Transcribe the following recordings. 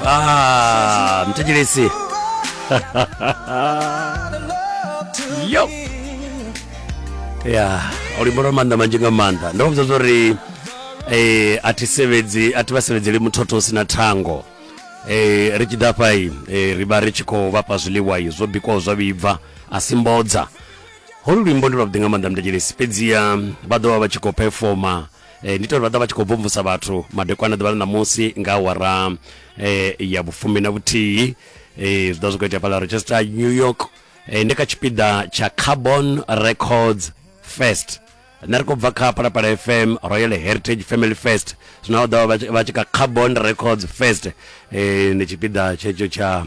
Ah, mtejelezi yo ya ulimbo lwa maanḓa manzhi nga maanḓa ndo vhudza uri eh a thi sevhedzi a thi vha sevhedzeli muthotho u si na thango eh ri tshi ḓa fha i eh, ri vha ri tshi khou vhafha zwiḽiwa i zwo bikwaho zwa vhibva a si mbodza holu luimbo ndi lwavhuḓi nga maanḓa mtejelesi fhedziha vha ḓo vha vha tshi khou pefoma e, ndi tori vha ḓa vha tshi khou bvumvusa vhathu madekwana ḓuvha ḽa ṋamusi nga awara e, ya vhufumi na vhuthihi e, zwi ḓa zwi khou itea fhala rochester new york e, ndi kha tshipiḓa tsha carbon records fest nṋe ri khou bva kha palapala fm royal heritage family fest zwino ḓa vha tshi kha carbon records fest e, ndi tshipiḓa tshetsho tsha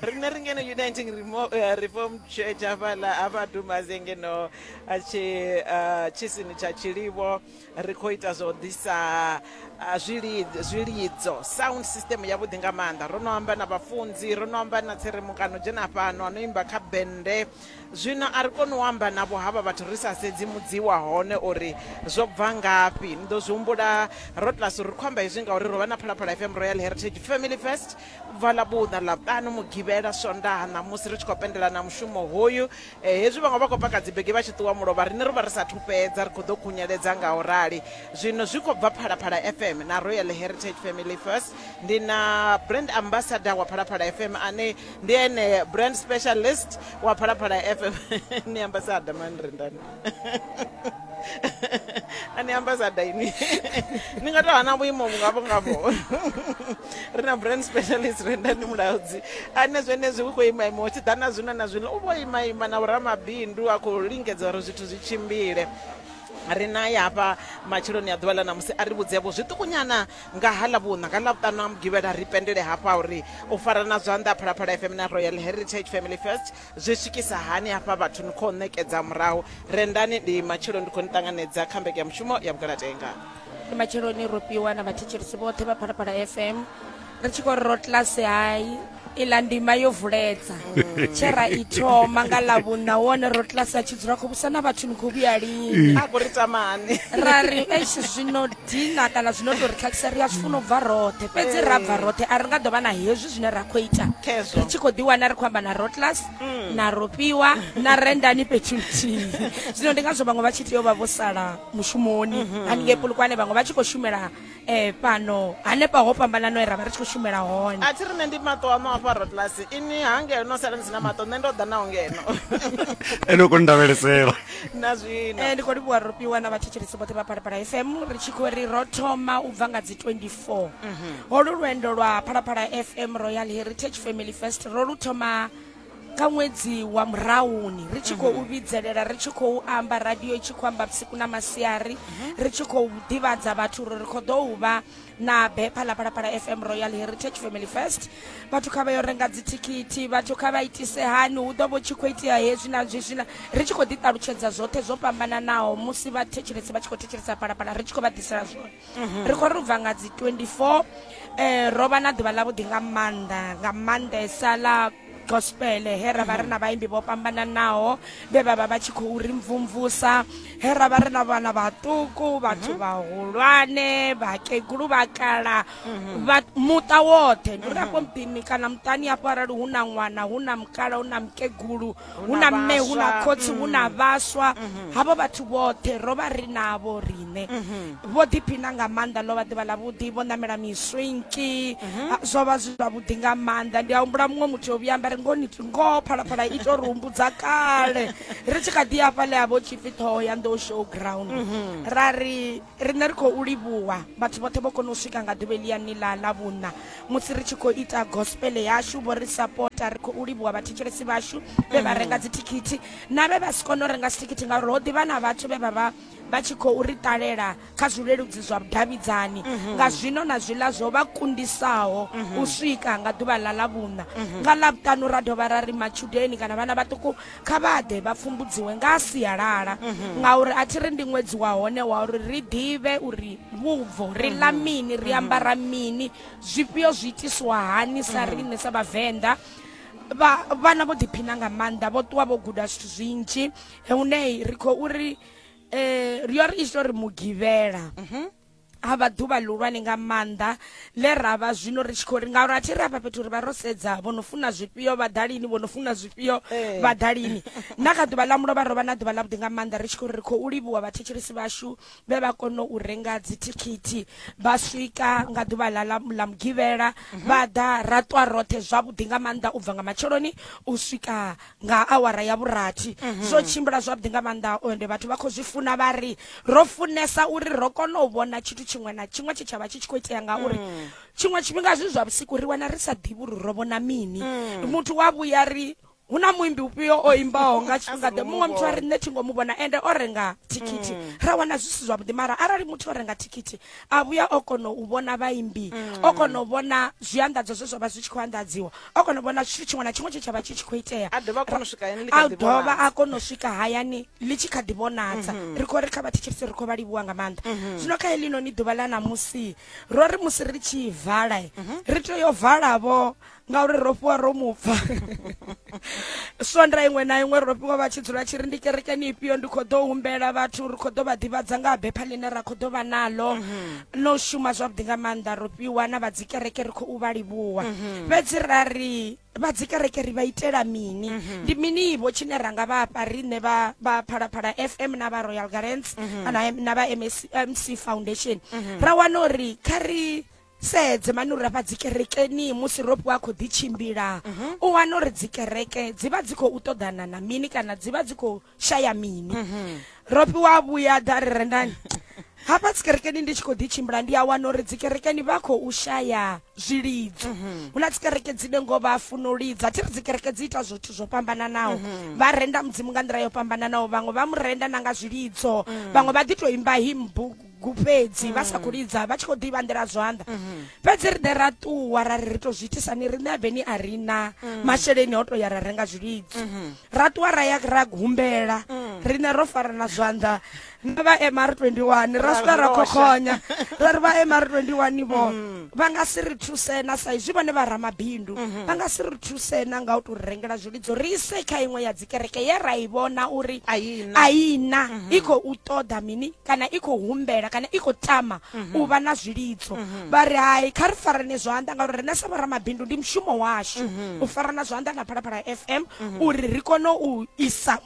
rine ri ngeno uniting eh, reform church hafhaḽa ha vhadumaze ngeno eh, eh, tshisini tsha tshilivho ri khou ita zwa u ḓisa zwilidzo sound system yavhuḓi nga maanḓa ro no amba na vhafunzi ro no amba na tserimukano dzhena fhano ano imba kha bende zwino a ri koni u amba navho havha vhathu ri sa sedzi mudzi wa hone uri zwo bva ngafhi ni ḓo zwi humbula ro tlas ri khou amba hezwi ngauri ro vha na phalaphala fm royal heritage family first bva ḽa vhuṋa ḽa vhuṱanu mugivhela swondaha ṋamusi ri tshi khou pendela na mushumo hoyu eh, hezwi vhaṅwe vha khou paka dzibege vha tshi ṱuwa mulovha riṋe ro vha ri sathu fhedza ri khou ḓo khunyeledza nga u rali zwino zwi khou bva phalaphala fm na royal heritage family first ndi na brand ambassador wa phalaphala fm ane ndi ene brand specialist wa phalaphala fm ni ambassador manrendani a ni ambasada ini ni nga to hana vhuimo vhungavho ngavho ri na brand specialist renda ndi mulaudzi ane zwenezwi hu khou ima ima tshi ḓa na zwino na zwino u vho ima ima na vhoramabindu a khou lingedza uri zwithu zwi tshimbile ri naye hafha matsheloni a ḓuvha ḽa namusi a ri vhudzevho zwiṱukunyana nga ha ḽa vhuṋa nga ḽavhuṱanu a mugivhela ri pendele hafha uri u farana zwanḓa phalaphala fm na royal heritage family first Zwi swikisa hani hafha vhathu ni khou ṋekedza murahu rendani? Ndi matshelo ndi khou ni ṱanganedza kha mbekanyamushumo ya Vhugalatenga. Ndi matsheloni ro fhiwa na vhathetshelesi vhoṱhe vha Phalaphala FM ri tshi khou ri ro class hai iḽa ndima yo vuledza tshe ra i thoma nga ḽa vhunna wone ro class a tshi dzula khou vhusa na vhathu ni khou vhuya lini A khou ri tamani. ra ri eish zwino dina kana zwino tou ri khakhisa ri a zwi funa u bva roṱhe fhedzi ra bva roṱhe a ri nga ḓo vha na hezwi zwine ra khou ita Khezwo. ri tshi khou ḓiwana ri khou amba na rotlas na rofhiwa na rendani fhethu nthihi zwino ndi ngazwo vhaṅwe vha tshi tea u vha vho sala mushumoni haningei pulukwane vhaṅwe vha tshi khou shumela um fhano hanefha ho fhambanano e ra vha ri tshi khou shumela hone a thi ri nṋe ndi maṱo aṋo afha rotlasi ini ha ngeno no sala ni si na maṱo nṋe ndo ḓa naho ngeno ene u koni ndavhelesela na zwino Eh, ndi khou livhuwa rofhiwa na vhathetshelesi vhoṱhe vha phalaphala fm ri tshi khou ri ro thoma u bva nga dzi 24 four holu lwendo lwa phalaphala fm royal heritage family fest ro lu thoma nga ṅwedzi wa murahuni ri tshi khou vhidzelela ri tshi khou amba radio i tshi khou amba vhusiku na masiari ri tshi khou ḓivhadza vhathu uri ri khou ḓo u vha na bepha ḽa phalaphala fm royal heritage family fest vhathu kha vha yo renga dzithikithi vhathu kha vha itise hani hu ḓo vho tshi khou itea hezwi na zwi zwina ri tshi khou ḓiṱalutshedza zwoṱhe zwo fhambananaho musi vhathetshelesi vha tshi khou thetshelesa phalaphala ri tshi khou vha ḓisela zwone mhm. ri khou ri u bva nga dzi 24 eh ro vha na ḓuvha ḽa vhuḓi nga maanḓa nga maanḓesa ḽa gospel he ra vha ri na vhaimbi vho fhambananaho vhe vha vha vha tshi khou ri mvumvusa he ra vha ri na vhana vhaṱuku vhathu mhm. vhahulwane vhakegulu vhakala mhm. muṱa woṱhe ndi uri afho mhm. muḓini kana muṱani afho arali hu na ṅwana hu na mukala hu na mukegulu hu na mme hu na khotsi hu na mm. vhaswa mm-hmm. havho vhathu vhoṱhe ro vha ri navho riṋe mm-hmm. vho ḓiphina nga maanḓa ḽo vha ḓivha ḽa vhuḓi vho ṋamela miswinki mm-hmm. ah, zwo vha zwi zwavhuḓi nga maanḓa ndi a humbula muṅwe muthu yo vhuya amba ri ngoni ngoho phalaphala i to ri humbudza kale ri tshi kha ḓi afha ḽe a vho tshipfi ṱhoho ya nḓo show ground ra ri Riṋe ri khou livhuwa vhathu vhoṱhe vho kona u swika nga ḓuvha eliani ḽa ḽa vhuṋa musi ri tshi khou ita gospel yashu vho ri sapota ri khou livhuwa vhathetshelesi vhashu vhe vha renga dzithikhithi na vhe vha si kone u renga dzithikhithi ngauri ho ḓivha na vhathu vhe vha vha vha tshi khou ri ṱalela kha zwileludzi zwa vhudavhidzani nga zwino na zwiḽa zwo vha kundisaho u swika nga ḓuvha ḽa ḽa vhuṋa nga ḽavhuṱanu ra dovha ra ri matshudeni kana vhana vhaṱuku kha vha ḓe vha pfumbudziwe nga ha sialala mhm. ngauri a thi ri ndi ṅwedzi wa hone wa uri ri ḓivhe uri vhubvo ri ḽa mhm. mini ri mhm. ambara mini zwifhio zwi itiswa hani sa riṋe sa vhavenḓa vha vhana vho ḓiphina nga maanḓa vho ṱuwa vho guda zwithu zwinzhi hune ri khou uri um eh, ri yo ri ita uri mugivhela ha vha ḓuvha ḽihulwane nga maanḓa ḽe ra vha zwino ri tshi khou ri ngauri a thi ri afha fhethu uri vha ro sedza vho no funa zwifhio vhaḓalini vho no funa zwifhio eh. vhaḓalini na kha ḓuvha ḽa mulovha ro vha na ḓuvha ḽavhuḓi nga maanḓa ri tshi khou ri ri khou livhuwa vhathetshelesi vhashu vhe vha kona u renga dzithikhithi vha swika nga ḓuvha ḽa ḽa mugivhela mhm. vha ḓa ra ṱwa roṱhe zwavhuḓi nga maanḓa u bva nga matsheloni u swika nga awara ya vhurathi mhm. zwo tshimbila zwavhuḓi nga maanḓa ende vhathu vha khou zwi funa vha ri ro funesa uri ro kona u vhona tshithu tshiṅwe na tshiṅwe tshe tsha vha tshi tshi khou itea ngauri mm. tshiṅwe tshifhinga zwi zwa vhusiku ri wana ri sa ḓivhi uri ro vhona mini mm. muthu wa vhuya ri hu na muimbi ufhio o imbaho nga tshifhinga ḓe muṅwe muthu a ri nṋe thi ngo mu vhona ende o renga thikhithi mm. ra wana zwi si zwavhuḓi mara arali muthu o renga thikhithi a vhuya o kona u vhona vhaimbi o kona u vhona zwianḓadzo zwe zwa vha zwi tshi khou anḓadziwa o kona u vhona tshithu tshiṅwe na tshiṅwe tshe tsha vha tshi tshi khou itea a dovha a kona u swika hayani ḽi kha a ḓi dovha vhonala. a kona u swika hayani ḽi tshi kha ḓi vhonadza ri khou ri kha vhathetshelisi ri khou vha livhuwa nga maanḓa zwino kha heḽinoni ḓuvha ḽa ṋamusi ro ri musi ri tshi vala eh, ri tea yo valavho ngauri ro fhiwa ro mupfa swonda iṅwe na iṅwe ro fhiwa vha tshi dzula tshi ri ndi kerekeni ifhio ndi khou ḓo humbela vhathu ri khou ḓo vha ḓivhadza nga ha bepha ḽine ra khou ḓo vha naḽo no shuma zwavhuḓi nga maanḓa ro fhiwa na vha dzikereke ri khou vha livhuwa mhm. fhedzi ra ri vha dzikereke ri vha itela mini mhm. ndi minivo tshine ra nga vhafha riṋe vha vha phalaphala fm na vha royal garants mhm. kana na vha mc foundation ra wana uri kha ri sedze mani uri afha dzikerekeni musi ropo a khou ḓitshimbila u wana uri dzikereke dzi vha dzi khou ṱoḓana na mini kana dzi vha dzi khou shaya mini mhm. ro fhiwa vhuya ḓa ri rendani hafha dzikerekeni ndi tshi khou ḓi tshimbila ndi a wana uri dzikerekeni vha khou shaya zwilidzo hu mhm. na dzikereke dzine ngo vha funo lidza thi ri dzikereke dzi ita zwithu zwo fhambananaho mhm. vha renda mudzimu nga nḓila yo fhambananaho vhaṅwe vha mu renda na nga zwilidzo mhm. vhaṅwe vha ḓi tou imba himbugu gufhedzi vha sa khou lidza vha tshi khou ḓivha nḓila zwanḓa fhedzi ri ḓe ra ṱuwa ra ri ri tou zwi itisa ni riṋe aveni a ri na masheleni o tou ya ra renga zwilidzi ra ṱuwa ra ya ra humbela riṋe ro farana zwanḓa na vha mr 21 ra swika ra khokhonya ra ri vha mr 21 vho vha nga si ri thuse na sa izwi vhone vha ramabindu vha nga si ri thuse na nga u tou rengela zwilidzo ri ise kha iṅwe ya dzikereke ye ra i vhona uri a i na i khou ṱoḓa mini kana i khou humbela kana i khou tama mhm. u vha na zwilidzo mhm. vha ri hai kha ri farane zwanḓa ngauri riṋe sa vhoramabindu ndi mushumo washu mhm. u farana zwanḓa na phalaphala f m uri ri kone u isa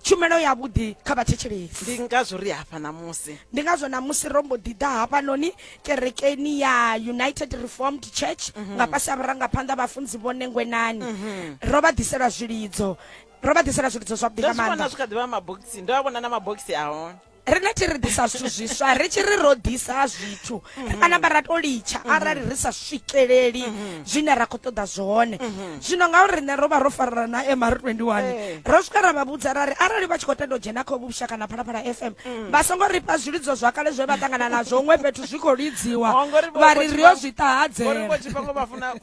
tshumelo ya vhudi kha vhathetshelesi ndi ngazwo ri hafha namusi ndi ngazwo namusi ro mbo ḓi ḓa hafhanoni kerekeni ya united reformed church mhm. nga fhasi a vhurangaphanḓa vhafunzi vhone ngwenani mhm. ro vha ḓisela zwilidzo ro vha ḓisela zwilidzo zwavhuḓi nga maanḓa zwi kha ḓivha mabogisi ndo a vhona na mabogisi a hone rine thi ri ḓisa zwithu zwiswa ri tshi ri ro ḓisa zwithu ri kana vha ra to litsha mm-hmm. arali ri sa swikeleli mm-hmm. zwine ra khou ṱoḓa zwone mm-hmm. zwino ngauri riṋe ro vha ro farela na mr 21 eh. ro swika ra vha vhudza ra ri arali vha tshi khou tenda u dzhena kha vhusha kana phalaphala fm mm. vha songo ri fha zwilidzo zwa kale zwe vha ṱangana nazwo huṅwe fhethu zwi khou lidziwa vha ri ri yo zwi ṱahadzela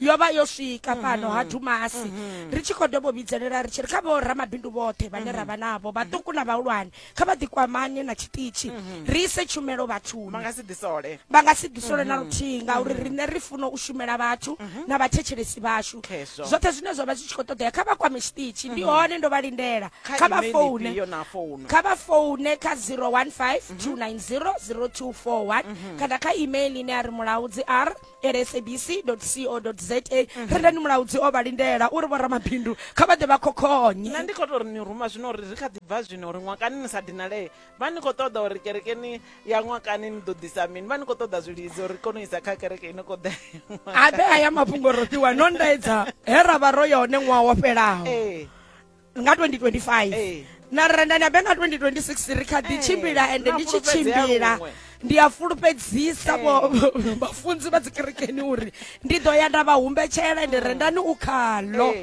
yo vha yo swika fhano ha dumasi ri tshi khou dobo vhidzelela ri tshi ri kha vho ramabindu vhoṱhe vhane ra vha navho vhaṱuku na vhahulwane kha vha ḓikwamane na tshiṱitshi ri ise tshumelo vha vhathuni nga si ḓisole vha nga si ḓisole na luthihi ngauri riṋe ri funa u shumela vhathu na vhathetshelesi vhashu Khezwo. zwoṱhe zwine zwa vha zwi tshi khou ṱoḓea kha vha kwame tshiṱitshi ndi hone ndo vha lindela kha kha vha email foune ifhio na founu kha vha foune kha 015 290 0241 kana kha email ine ya ri mulaudzi r lsabc.co.za mhm. ri ndani mulaudzi o vha lindela uri vho ramabindu kha vha ḓe vha khokhonye na ndi khou tou ri ni ruma zwino uri ri kha ḓi bva zwino uri ṅwakani ni sa dinalee vha ni khou ṱoḓa uri kerekeni ya ṅwakani ni ḓo ḓisa mini vha ni khou ṱoḓa zwilidzi uri kone u isa kha kereke ino kho ḓae a ḓe a ya mafhungo roṱiwa no ndaedza he ra vha ro yone ṅwaha wo fhelaho nga 2025 hey. na renda ni abe nga 2026 ri kha ḓi tshimbila ende ndi tshi tshimbila ndi a fulufhedzisa vhafunzi vha dzikerekeni uri ndi ḓo ya nda vha humbetshela ende rendani u khalo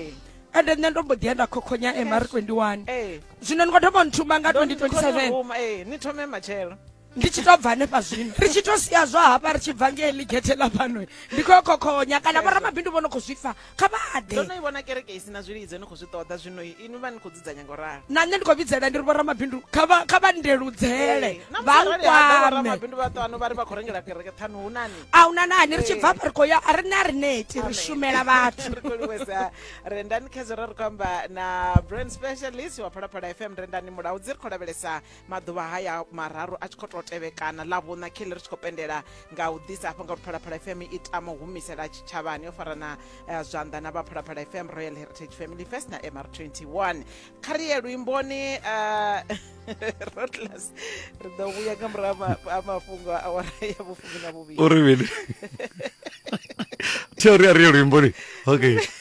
ende nṋe ndo mbo ḓi ya nda khokhonya mr 21 zwino ni khou thoma nthuma nga 2027 ni thome matshelo ndi tshi to bva hanefha zwino ri tshi to sia zwa hafha ri tshi bva ngei ḽigethe ḽa fhano ndi khou yo khokhonya kana vhoramabindu vho no khou zwi pfa kha vha ḓe ndo no i vhona kereke i si na zwilidzo ni khou zwi ṱoḓa zwino inwi vha ni khou dzudzanya ngo ralo na nṋe ndi khou vhidzela ndi ri vhoramabindu kha vha kha vha ndeludzele vha nkwame vhoramabindu vha ṱano vha ri vha khou rengela kereke ṱhanu hu nani a hu na nani ri tshi bva hafha ri khou ya a ri na ri neti ri shumela vhathu ri khou livhesa rendani khezero ri khou amba na brand specialist wa phalaphala fm rendani mulaudzi ri khou lavhelesa maḓuvha haya mararu a tshi khou tou tevhekana ḽa vhuṋa khele ri tshi khou pendela nga u ḓisa hafha nga uri phalaphala fm i tama u humisela tshitshavhani yo fara na eh, zwanḓa na vha phalaphala fm royal heritage family first na mr 21 kha ri ye luimboni eh, rotlas ri ḓo vhuya nga murahu ha ma- ha mafhungo a awara ya vhufumi na vhuvhili o re bele theoria re luimboni okay